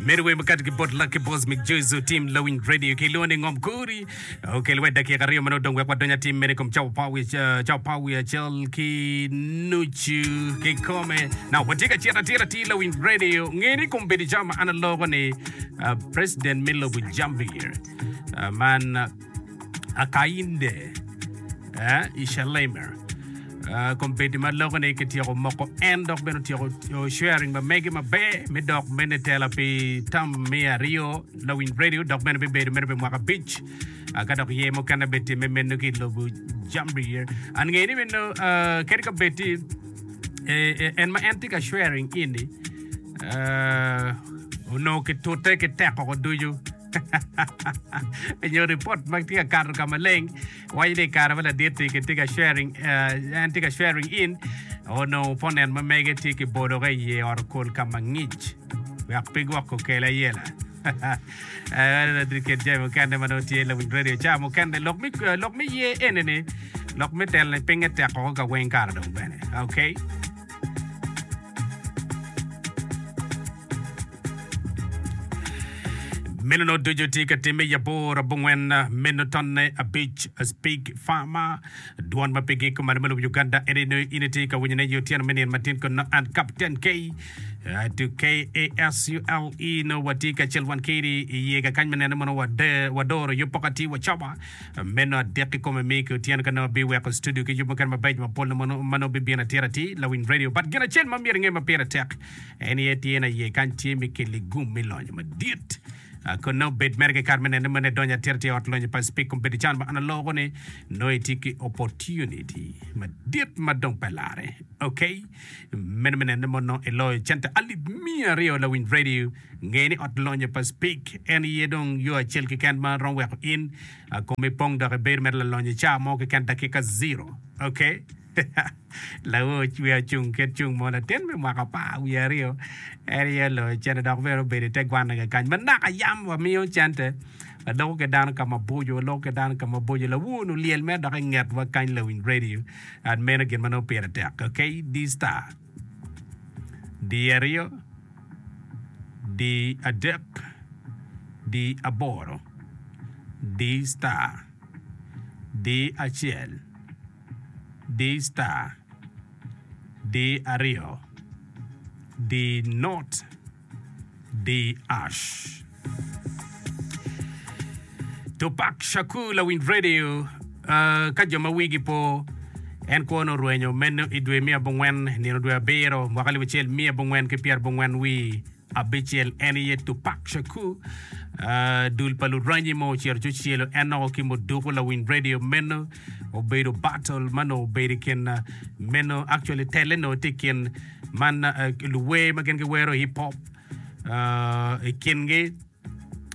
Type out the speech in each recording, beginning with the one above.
Medo wer makato ki bot Lucky Boss Mick Joyce Tim Lawing Radio ki lone Ngom Kuri okel wet dakika aryo meno dong wek wadony atim mene kom Chow Power uh, Chow Power acel ki nucu ki kome na watye ka cito atira ti Lawing Radio ngeni kom bedo jam ma an alogo ni uh, President me lobo Jambir uh, man uh, Akainde, Ishelaimer, kombeddi ma loko ni kityeko moko en dok bene otyeko sharing ma mege maber me dok mene tela pi tam me aryo lawiny radio dok bene bibedo mene pi mwaka abic ka dok ye mukene be time meno ki lobo jambi an nge ni meno kadi ka bed ti en ma en ti ka sharing ini onongo kitute ki teko ducu nyo report ma tye ka kato ka maleng waco ni kare ma ladit ni kitye ka sharing eh, en tye ka sharing in onongo opponent ma mege tye ki boloke i ye ot okol ka ma ngic wek pe gwoko kele ayela Eh, ladit kit jami mukene ma nongo tye lawiny radio ca mukene lok mi eh, lok mi ye enene lok mi telone pinge tek koko ka weng kare dong bene okay Meno nongo ducu tye ka timme i abor abongwen meno tonne abic Speak Farmer. Dwon ma pigi kuman me lobo Uganda ene ni in itye ka winyone i otyeno me nino matin kun nongo an Kapten K eh, to KASULE nongo watye kacel wan keri i yega kany me neno ni mono wade wadoro yub poko atir wacoba meno adek i kome mi ki otyeno ka nongo abiweko studio ki yub mukene mabeco mapol na mono ma nongo bibino atir atir lawiny radio but gin acel ma myero inge ma pire tek En aye tyen aye kany tye me keli gum me lonyo madit. Ah, Kone obed mere kikare me nene mene donyo atira tye ot lonyo pa Speke Kombedo can ma an aloko ni nongo itye ki opportunity madit ma dong pe larre. Ok, mene me nene mo nongo iloyo cente alip miya aryo lawiny radio. Nge ni ot lonyo pa Speke en aye dong yo acel keken ma romo weko in ah, komi pong dok ibedo mere lalonyo i caa mo keken dakika zero. Ok. Lawe ocwe acung kit cung mo latin me mwaka apar wiye aryo. En aye oloyo cente dok bene obedo i te gwanna kakany ma naka yam wamiyo cente. Ladoko ki dano ka maboco, waloko ki dano ka maboco. Lawe onongo olyel mere dok i ngetwa kany lawiny radio. And meno gin ma nongo pire tek. Ok, D star. D aryo. D adek. D aboro. D star. D acel. Di star. Di aryo. Di not. Di ash. Tupac Shakur lawiny radio uh, ka jo ma wigi po en kwo nongo orwenyo meno i dwe me abongwen nino dwe abiro mwaka alip acel miya abongwen ki pyerabongwen wi Abicel en aye Tupac Shakur, dul pa luranyi ma ocito ci ocelo en nongo ki muduku lawiny radio meno obedo battle ma nongo obedo i kin meno actually telle nongo tye i kin man luwer ma gin giwero hip hop i kingi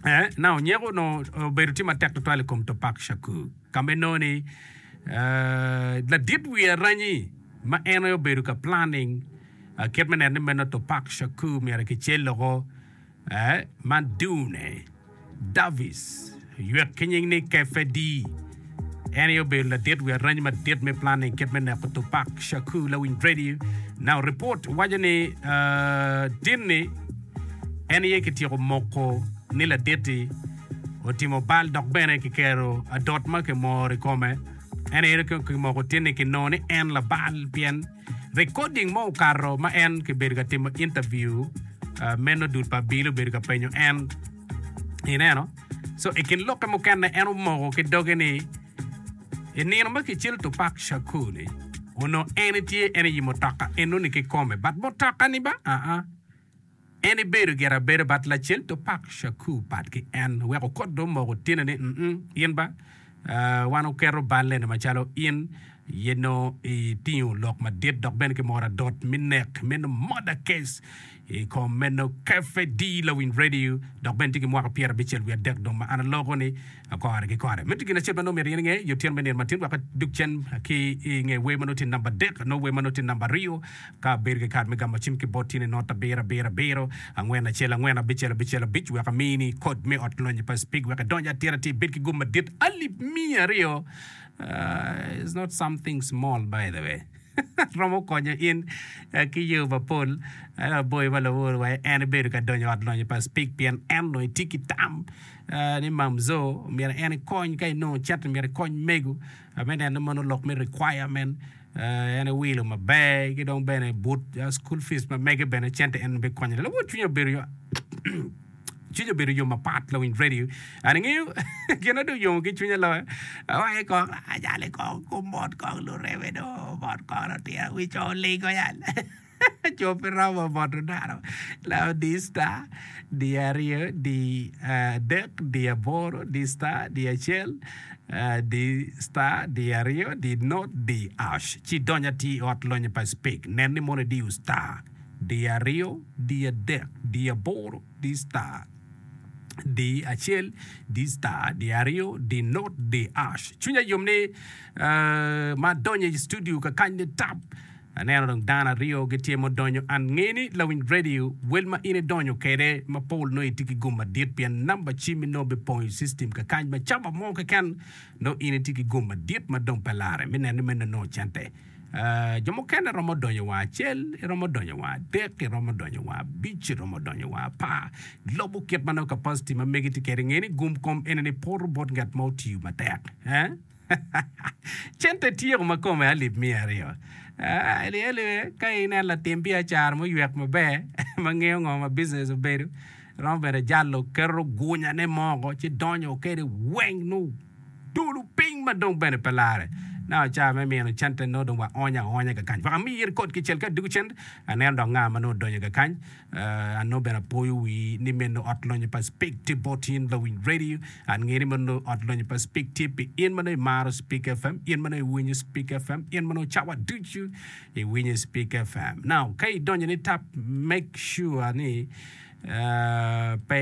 eh, na onyeko nongo obedo tye matek tutwal i kom Tupac Shakur ka me nongo ni ladit wi aranyi ma en aye obedo ka planning Kit me neno ni meno Tupac Shakur myero kicel loko man Dune Davis ywek ki nying ni Kefe D. En aye obedo ladit wi arany madit me planning kit me neko Tupac Shakur lawiny radio. Now report waco ni tin ni en aye kityeko moko ni laditi otimo bal dok bene kikero adot ma kimoro i kome. En aye kimoko tin ni kinongo ni en labal pien Recording mo okato ma en kibedo ka timo interview meno dul pa Abili obedo ka penyo en ineno so ikin lokke mukene en omoko ki doge ni inino ma kicel Tupac Shakur ni onongo en tye en i mutoka enoni kikome but mutoka ni ba aa En ibedo gire abedo bat lacen to pak Shakur pat ki en wek okot do moko otine ni mm in ba wan oketo balene macalo in ye no itingo lok madit dok bene ki moro adot mi nek meno murder case ikom meno KFD lawiny radio dok bene tye ki mwaka pyera abicel wiye adek dong ma an aloko ni Kore ki kore. Miti gin acel ma nongo myero in inge, yo tyen me nino matin wek adug cen ki i nge wer ma nongo tye namba adek, nongo wer ma nongo tye namba aryo, ka abedo ki kad me gamo cim ki bot tyene not abiro abiro abiro, angwen acel angwen, abicel abicel abic, wek amini kod me ot lonyi pa Spig wek idonyo atira ci ibed ki gum madit alip miya aryo, it's not something small by the way, romo konyo in ki yo mapol, ento aboyo ma lawor wa en ibedo ka donyo ot lonyi pa Spig pien en nongo itye ki tam. ni Mamzo myero en ekony ka inongo cito myero ikony mego me neno mono lok me requirement en ewilo maber ki dong bene but school fees ma mege bene cente en be konye lawot cwinye obedo yo cwinye obedo yo mapat lawiny radio an ingeyo gina dong yomo ki cwinye loyo awaye kong ajale kong kumot kong lureme do mot kong lutira wic olingo yal Co pe romo moto dano lao diyo star diyo aryo diyo adek diyo aboro diyo star diyo acel diyo star diyo aryo diyo not diyo ash ci idony atir i ot lonyo pa Speke nen ni mono idiyo star diyo aryo diyo adek diyo aboro diyo star diyo acel diyo star diyo aryo diyo not diyo ash cwinya yom ni ma adonyo i studio kakany ni tap Aneno dong dano aryo gitye ma odonyo an nge ni lawiny radio wel ma in idonyo kede ma Paul nongo itye ki gum madit pien namba cim mi nongo bipong i system kakany ma caba mo keken nongo in itye ki gum madit ma dong pe lare mi neno ni meno nongo cente aah jo mukene romo donyo wa acel iromo donyo wa adek iromo donyo wa abic iromo donyo wa apar lubo kit ma nongo capacity ma megi tye kede nge ni gum kom enini poto bot ngat ma otiyo matek eeh. Cente tyeko ma kome alip miya aryo. Elyelle, ka inen latim biacara muywek maber ma ngeyo ngo ma bizines obedo, romo bene jalo keto gunyane moko ci donyo kwede weng nongo dulu piny ma dong bene pe lare. Naka ca me mino cente nongo dong waonyo aonya kakany. Wek amir kod kicel ka adiko cente, aneno dok nga ma nongo odonyo kakany. An nongo bene apoyo wi ni meno Ot Lonyo pa Spik tye bot in lawiny radio. An ngeyo ni ma nongo Ot Lonyo pa Spik tye pi in ma nongo imaro Spik FM, in ma nongo iwinyo Spik FM, in ma nongo cawa ducu iwinyo Spik FM. Now, ka idonyo ni tap, make sure ni eh, pe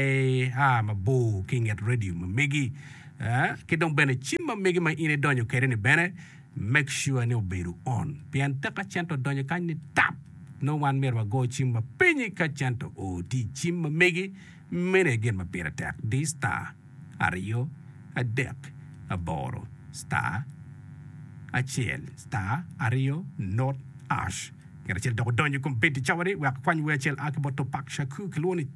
ia mabor ki inget radio ma megi. Eh, ki dong bene cim ma megi ma in idonyo kede ni bene, Make sure ni obedo on pien tek ka cente odonyo kany ni tap nongo wan myero wago cim wa pinyi ka cente oo tye i cim ma megi meno aye gin ma pire tek di star aryo adek aboro star acel star aryo not ash ngat acel dok odonyo i kom bed cawa ni wek akwany wer acel a ki bot Tupac Shakur kilwongo ni